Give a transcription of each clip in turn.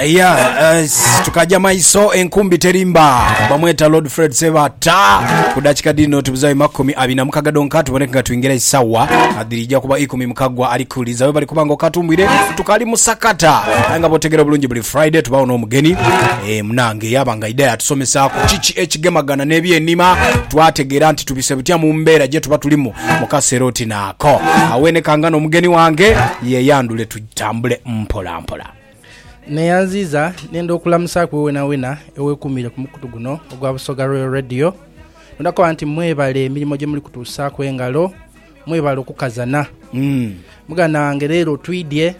ya eh, tukaja maiso enkumbi terimba bamweta lord fred sebata ku dakika dino tubuzayo makumi abiri na mukaga donka tuboneke nga twingira isawa adirija kuba ikumi mukagwa alikuliza we bali kuba nga okatumbwire tukali musakata aye nga botegera bulungi buli friday tubawo n'omugeni eh, munange yaba nga idaya atusomesaku kiki ekigemagana n'ebyenima twategeera nti tubise butya mu mbeera gye tuba tulimu mu kaseera oti naako awenekanga n'omugeni wange yeyandule tu bitambule mpolampola. Neyanziiza nenda okulamusaaku iwe wenawena ewekuumiire ku mukutu guno ogwa Busoga Royal Radio. Nenda kukoba nti mwebale emirimo gyemuli kutuusaaku engalo, mwebale okukazana. Muganda wange leero twidye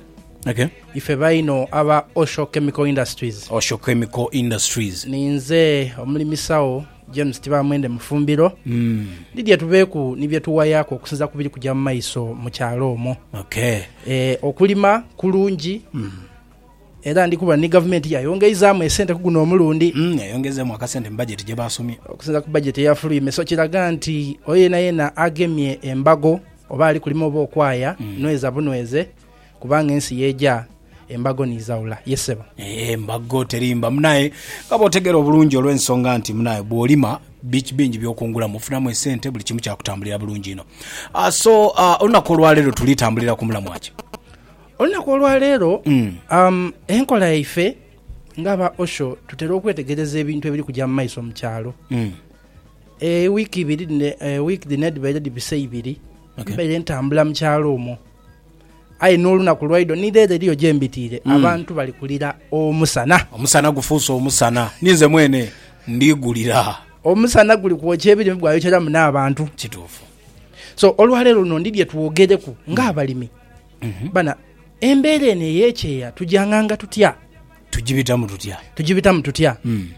Okay. ife baino aba Osho Chemical Industries. Osho Chemical Industries. Ninze omulimisawo James Tibaamwende Mufumbiro, Lydia Tubeeku ni bye tuwayaaku okusinza ku biri kuja mu maiso mu kyalo omwo. E, Okulima kulungi era ndi kuba ni Gavumenti yayongeizaamu esente ku guno omulundi. Yayongezeemu akasente mu bajeti gye baasomye. Okusinza ku bajeti eyafulwime so kiraga nti oyo yenayena agemye embago oba ali kulima oba okwaya, nweza bunweze Kubanga ensi y'eja, embago ni zaula. Ye sebo. Ee, embago terimba. Munaye, nga bw'otegeera obulungi olw'ensonga nti, munaye, bw'olima, bi, bingi by'okungulamu. Ofunamu esente, buli kimu kya kutambulira bulungi inho. Ah, so, ah, olunaku olwa leero tuli tambulira ku mulamwa ki? Olunaku olwa leero, um, enkola yaife nga aba Osho tutera okwetegereza ebintu ebiri kuja mu maiso mu kyalo. Ewiiki ibiri dhino, ewiiki dhino edhibaire dhibise ibiri, Okay. mbaire ntambula mu kyalo omwo. Aye n'olunaku lwaidho ni leero eriyo gye mbitiire, abantu bali kulira omusana. Omusana gufuuse omusana, ninze mwene ndi gulira. Omusana guli kwokya ebirime gwayokyeramu n'abantu. Kituufu. So olwaleero luno ndidhye twogereku ng'abalimi bana embeera eno ey'ekyeya tugyang'anga tutya? Tugibitamu tutya? Tugibitamu tutya? Mm.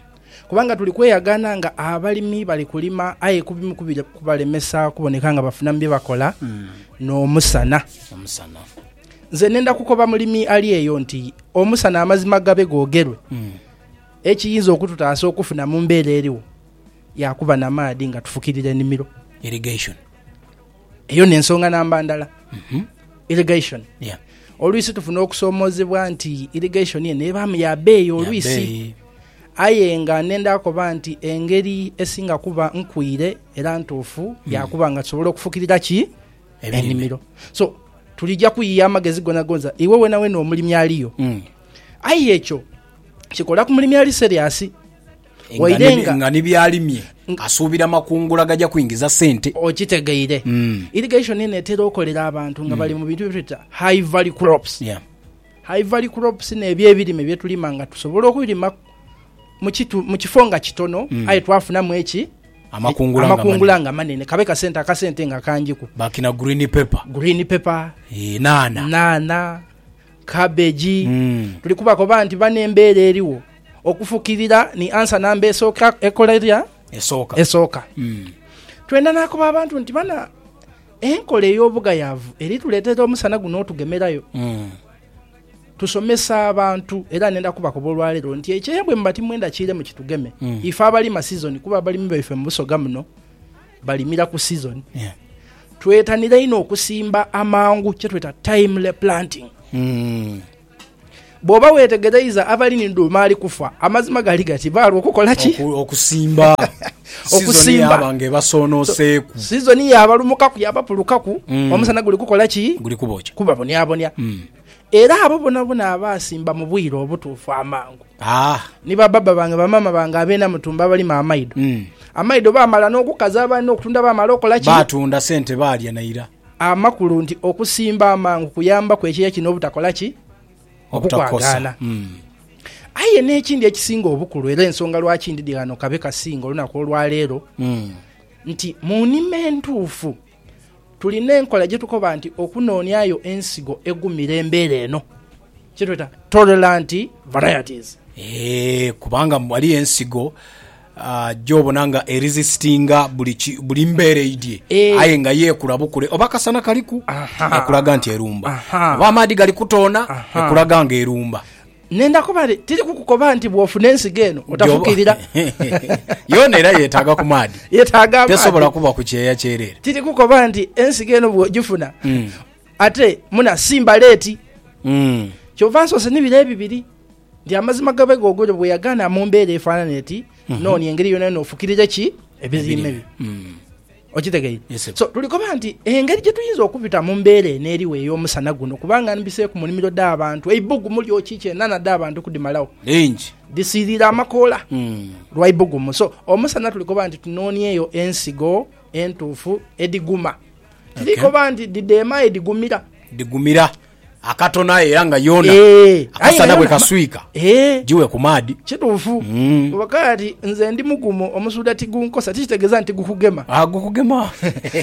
Kubanga tuli kweyagaana nga abalimi bali kulima aye ku bimu ku biri kubalemesa kuboneka nga bafunamu bye bakola mm. n'omusana. Omusana. Nze nenda kukoba mulimi ali eyo nti omusana amazima gabe googerwe mm. ekiyinza okututaasa okufuna mu mbeera eriwo yakuba na maadhi nga tufukirira enimiro. Irrigation. Eyo n'ensonga namba ndala, irrigation. Yeah. Oluisi tufuna okusoomoozebwa nti irrigation eno ebaamu ya beeyi oluisi. Yabeeyi. Aye nga nenda akoba nti engeri esinga kuba nkwiire era ntuufu ya kuba nga tusobola okufukirira ki? Ebirime. Enimiro. So, tulija kuyiya amagezi gonagonza iwe wenawena omulimi aliyo. Mm. Aye ekyo kikola ku mulimi ali serious. Waire nga. Nga ni by'alimye asuubira makungula gaja kwingiza sente. Okitegeire. Irrigation eno etera okolera abantu nga bali mu bintu bye tweta high value crops. Yeah. High value crops n'ebyo ebirime bye tulima nga tusobola okubirima mu kitu, mu kifo nga kitono aye twafunamu eki? Amakungula nga manene. Amakungula nga manene. Kabe kasente, akasente nga kangiku. Bakina green pepper. Green pepper. Yee, nhanha. Nhanha, cabbage. Tuli kubakoba nti bano embeera eriwo. Okufukirira ni ansa namba esooka ekola erya? Esooka. Esooka. Twenda nakoba abantu nti bana enkola ey'obugayaavu eri tuleetera omusana guno otugemerayo. Tusomesa abantu era nenda kubakoba olwaleero nti ekyeya bwemuba timwenda kiiremu kitugeme, ife abalima sizoni kuba abalimi baife mu Busoga muno balimira ku sizoni. Twetanire inho okusimba amangu kyetweta timely planting. Bw'oba weetegereiza abali ni dhuuma ali kufa, amazima gali gati baalwo okukola ki? Okusimba. Sizoni yaaba nga ebasoonooseeku. Sizoni yaabalumukaku, yaabapulukaku. Omusana guli kukola ki? Guli kubokya. Kubabonyabonya. Era abo boonaboona abaasimba mu bwire obutuufu amangu, ni ba baba bange, ba maama bange abeena mu tumbo abalima amaido, amaido baamala n'okukaza, abaali n'okutunda baamala okukola ki? Baatunda sente baalya naira. Amakulu nti okusimba amangu kuyambaku ekyeya kino obutakola ki? Obukwagaana. Aye n'ekindi ekisinga obukulu era ensonga lwaki ndidhi ghano kabe kasinga olunaku olwaleero, nti mu nima entuufu tulina enkola gye tukoba nti okunooniayo ensigo egumira embeera eno, kye tweta tolerant varieties. Eeh, kubanga ghaligho ensigo. Gy'obona nga erisisitinga buli mbeera eidhye aye nga yeekula bukule. Oba akasana kaliku, ekulaga nti erumba. Oba amaadhi gali kutoona, ekulaga nga erumba. Nenda kuba nti tiri kukukoba nti bw'ofuna ensigo eno otafukirira. Yoona era yeetaaga ku maadhi. Yeetaaga amaadhi. Tesobola kuba ku kyeya kyereere. Tiri kukoba nti ensigo eno bw'ogifuna ate muna simba leeti. Kyova nsoose ni biro ebibiri. Nti amazima gabe googolyo bwe yagaana mu mbeera efaanana eti, Noonia engeri yonayona ofukirire ki ebirime byo. Okitegeire? Yes, sebo. So, tuli koba nti engeri gye tuyinza okubita mu mbeera eno eriwo ey'omusana guno, kubanga mbiseeku mu nimiro dh'abantu, eibugumu lyoki ki enhanha dh'abantu kudhimalawo, Lingi. dhisiiriire amakoola Mm. lwa ibugumu. So, omusana tuli koba nti tunoonieyo ensigo entuufu edhiguma. Tiri Okay. koba nti dhidheema aye dhigumira. Dhigumira. Akatono aye era nga yona Eeh, aye akasana nga bwe yona ma- kaswika Eeh. jiwe ku maadhi. Kituufu. Mm. Kuba kaati nze ndi mugumu, omusuudha tigunkosa, tikitegeeza nti gukugema. Ah, gukugema.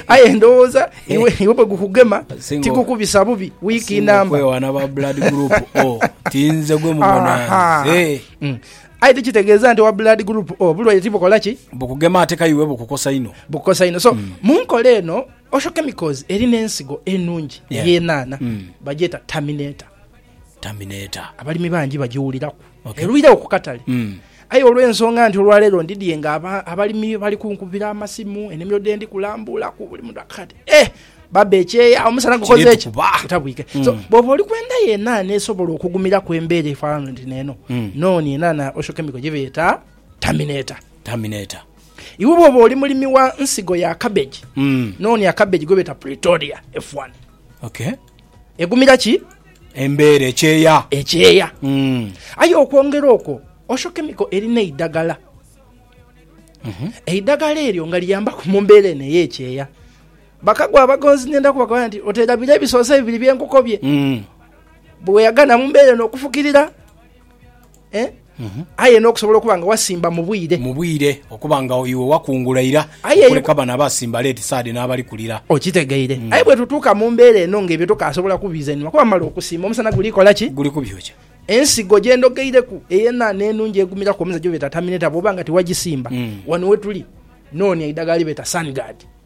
Aye ndowooza iwe iwe bwe gukugema Singa- tigukubisa bubi wiiki Singa namba. okwewaana ba blood group O, tinze gwe mubona Aha. nze. Mm. Aye tikitegeeza nti owa blood group O bulwaire tibukola ki? Bukugema ate ka iwe bukukosa inho. Bukukosa inho. So, mu nkola eno Osho chemicals eri n'ensigo enungi ey'enhanha bagyeta Terminator. Terminator. Abalimi bangi bagiwuliraku erwiregho ku katale aye olw'ensonga nti olwaleero ndidhie nga abalimi bali kunkubira amasimu, enimiro dhendi kulambuulaku buli muntu akaka ati eeh baba ekyeya omusana gukoze ki? Gutabwike. So bwooba oli kwenda yo enhanha esobola okugumiraku embeera efanana oti n'eno, nonie enhanha ya Osho Chemical gyebeeta Terminator. Terminator. Iwe bw'oba oli mulimi wa nsigo ya kabeji, noonia kabeji gwe beeta Pretoria F1. Egumira ki? Embeera ekyeya. Ekyeya. Aye okwongera okwo, Osho Chemical erina eidagala. Eidagala eryo nga liyambaku mu mbeera eno ey'ekyeya. Bakago abagonzi nenda kubakobera nti oterabira ebisoozi ebibiri bye nkukobye. Bwe weeghagana mu mbeera eno okufukirira. aye n'okusobola okuba nga wasimba mu bwire. Mu bwire, okuba nga iwe wakungula ira okuleka bano abasimba leeti saadi n'abali kulira. Okitegeire? Aye bwetutuuka mu mbeera eno ng'ebyo tokaasobola kubizenua kuba mala okusimba omusana guli kola ki? Guli kubyokya. Ensigo gye ndhogeireku ey'enhanha enungi egumiraku omuze gyebeeta tamineta bw'oba nga tiwagisimba, wano wetuli noonia eidagala lyebeeta Sun Guard.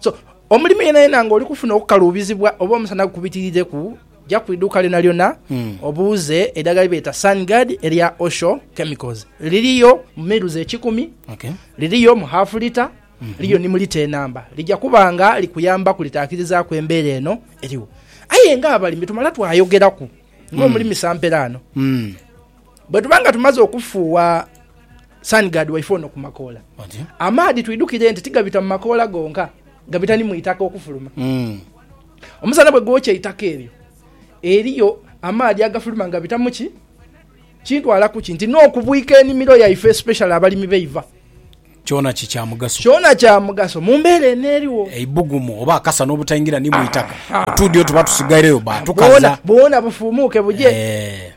So, omulimi yenayena nga oli kufuna okukaluubizibwa oba omusana gukubitirireku, ja ku iduuka lyonalyona hmm. obuuze eidagala lyebeeta Sunguard erya Osho Chemicals. Liriyo mu miruzi ekikumi, liriyo mu half lita, hmm. liriyo ni mu lita enamba. Lija kuba nga likuyamba kulitaakirizaku embeera eno eriwo. Aye nga abalimi tumala twayogeraku ng'omulimi hmm. samperaano. bwe tuba nga tumaze okufuuwa sanigaadi waife ono ku makoola amaadhi twidhukire nti tigabita mu makoola gonka gabita ni mu itaka okufuluma mm. omusana bwe gwokya eitaka eryo eriyo amaadhi agafuluma nga gabita muki kintwala kuki nti n'okubwika enimiro yaife especially abalimi beiva kyona kikyamugaso kyona kyamugaso mu mbeera eno eriwo eibugumu oba akasa n'obutaingira ni mu itaka otuudyo tuba tusigaireyo batukaza bwona bufuumuuke buje eh.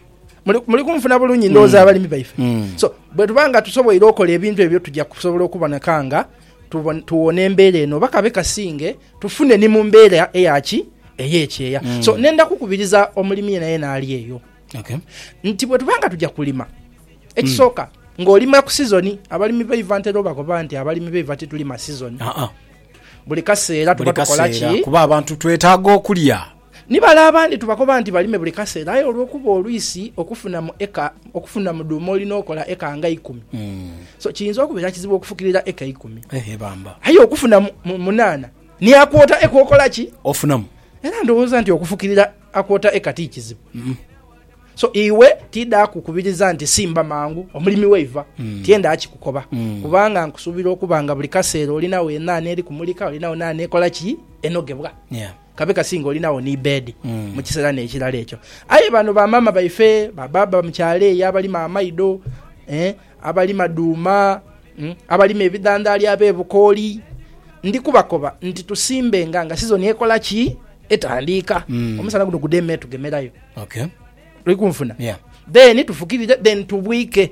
muli kunfuna bulungi ndowooza mm. abalimi baife mm. so bwetuba nga tusoboire okola ebintu ebyo tujja kusobola okuboneka nga tuwona embeera eno oba kabe kasinge tufune ni mu mbeera eyaki eyekyeya mm. so nenda kukubiriza omulimi yena yena ali eyo okay. nti bwetuba nga tujja kulima ekisooka mm. ng'olima ku sizoni abalimi baiva ntera obagoba nti abalimi baiva titulima sizoni uh -uh. buli kaseera tuba tukolaki kuba abantu twetaaga okulya Ni bale abandi tubakoba nti balime buli kaseera aye olw'okuba olwisi okufunamu eka, okufunamu dhuuma olina okola eka nga ikumi. So kiyinza okubeera kizibu okufukirira eka ikumi. Ehe bamba. Aye okufuna mu, mu, munaana ni akwota eka okola ki? Ofunamu. Era ndowooza nti okufukirira akwota eka ti kizibu. So iwe tiidha kukubiriza nti simba mangu omulimi waiva. Tiendha kikukoba. Kubanga nkusuubira okuba nga buli kaseera olinagho enaana eri kumulika, olinagho naana ekola ki? Enogebwa. Yeah. kabe kasinga olinagho ni beedi mu kiseera n'ekirala ekyo. Aye bano ba maama baife, ba baaba mu kyalo eyo abalima amaido, eh, abalima dhuuma, mm, abalima ebidhandhaali ab'ebukooli, ndi kubakoba nti tusimbenga nga sizoni ekola ki? Etandiika. Omusana guno gudhe me tugemerayo. Okay. Oli kunfuna? Yeah. Then tufukirire, then tubwike.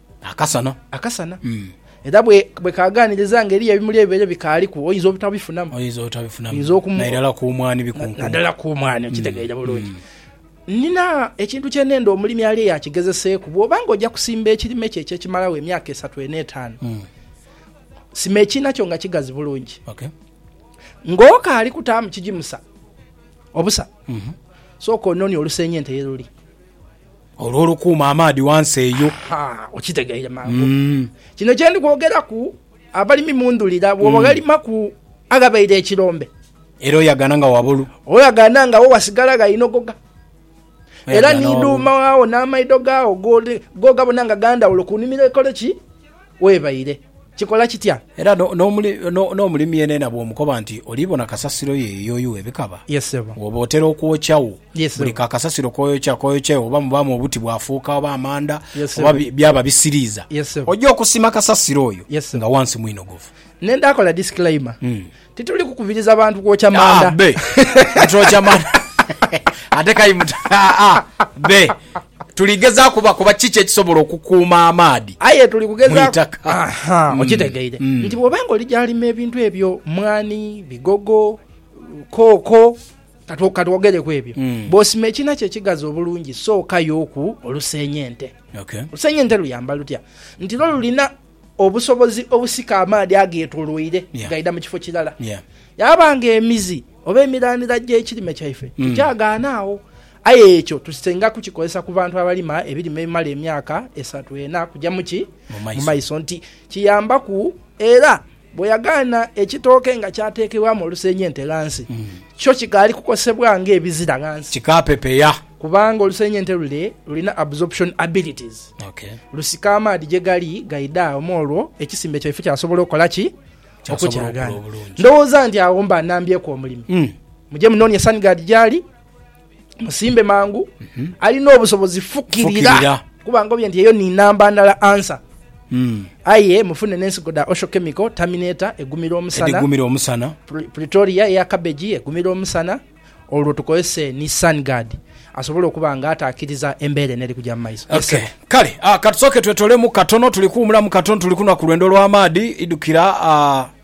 Akasana. Akasana. Era bwe kaaganiriza nga eriyo ebimuli ebibaire bikaaliku, oyinza obutabifunamu. Oyinza obutabifunamu. Nairala ku mwaani bikunkumu. Naddala ku mwaani, okitegeire bulungi. Nnina ekintu kye neenda omulimi alye yaakigezeseeku. Bw'oba nga oja kusimba ekirime kyo eky'ekimalagho emyaka esatu eno etaanu, sima ekiina kyo nga kigazi bulungi. Ng'okaali kutaamu kigimusa obusa, sooka ononie olusenyi ente ye luli. Olwo olukuuma amaadhi ghansi eyo. Ha, okitegeire mangu. Kino kye ndi kwogeraku abalimi mu ndhulira, bw'oba oghalimaku aghabaire ekirombe. Era oyagana nga wabulu. Oyagana nga wo wasigala gha inogoga. Era ni dhuuma waagho n'amaidho gaagho go ghabona nga ga ndhawulo ku nimiro ekole ki? webaire. Kikola kitya? Era n'omulimi yeenayena bw'omukoba nti oliibona kasasiro ye yeyooyugha ebikaba, wooba otera okwokya wo. Buli ka kasasiro k'oyokya k'oyokya oba mubaamu obuti bwafuuka oba amanda oba byaba bisiriiza, oja okusima kasasiro oyo nga wansi mwinogovu. Nenda kola disclaimer, Tituli kukubiriza bantu kwokya manda. Ah, be. Twokya manda. Ate kayimuta. Ah, ah, be. Tuli gezaaku bakuba kiki ekisobola okukuuma amaadhi. Aye tuli kugezaaku. Aha, mm. okitegeire. Mm. Nti bwoba nga oli gyalima ebintu ebyo, mwani, bigogo, kooko, katwogereku ebyo. Mm. Bwosima ekina kye kigazi obulungi, sookayoku oluseenya ente. Okay. Oluseenya ente luyamba lutya? Nti lwo lulina obusobozi obusika amaadhi ageetoloire nga gaidha mu kifo kirala. Yaaba nga emizi oba emiranira gy'ekirime kyaife hmm. tikyagaana agho. Aye ekyo tusinga kukikozesa ku bantu abalima ebirime ebimala emyaka esatu ena kugya muki mu maiso nti kiyambaku era Bwe yagaana ekitooke nga kyateekebwamu olusenyente ghansi, kyo kikaali kukosebwa ng'ebizira ghansi. Kikaapepeya. Kubanga olusenyente lule lulina absorption abilities, lusika amaadhi gye gali gaidha agho mw'olwo ekisimbe kyaife kyasobola okola ki? Okukyagaana. Ndowooza nti agho mba nnambyeku omulimi. Muje munoonye Sungard gy'ali. musimbe mangu mhm. alina obusobozi fukirira kuba ngobye nti eyo ni namba ndala ansa mm. aye mufune nensigo da osho chemical terminator egumira omusana egumira omusana pretoria eya cabbage egumira omusana olwo tukozese ni sun guard asobola okuba nga atakiriza embeera eneri kuja mumaiso okay. kale uh, ah, katusoke twetolemu katono tuli kuwumulamu katono tuli kunwa ku lwendo lw'amaadhi idukira uh,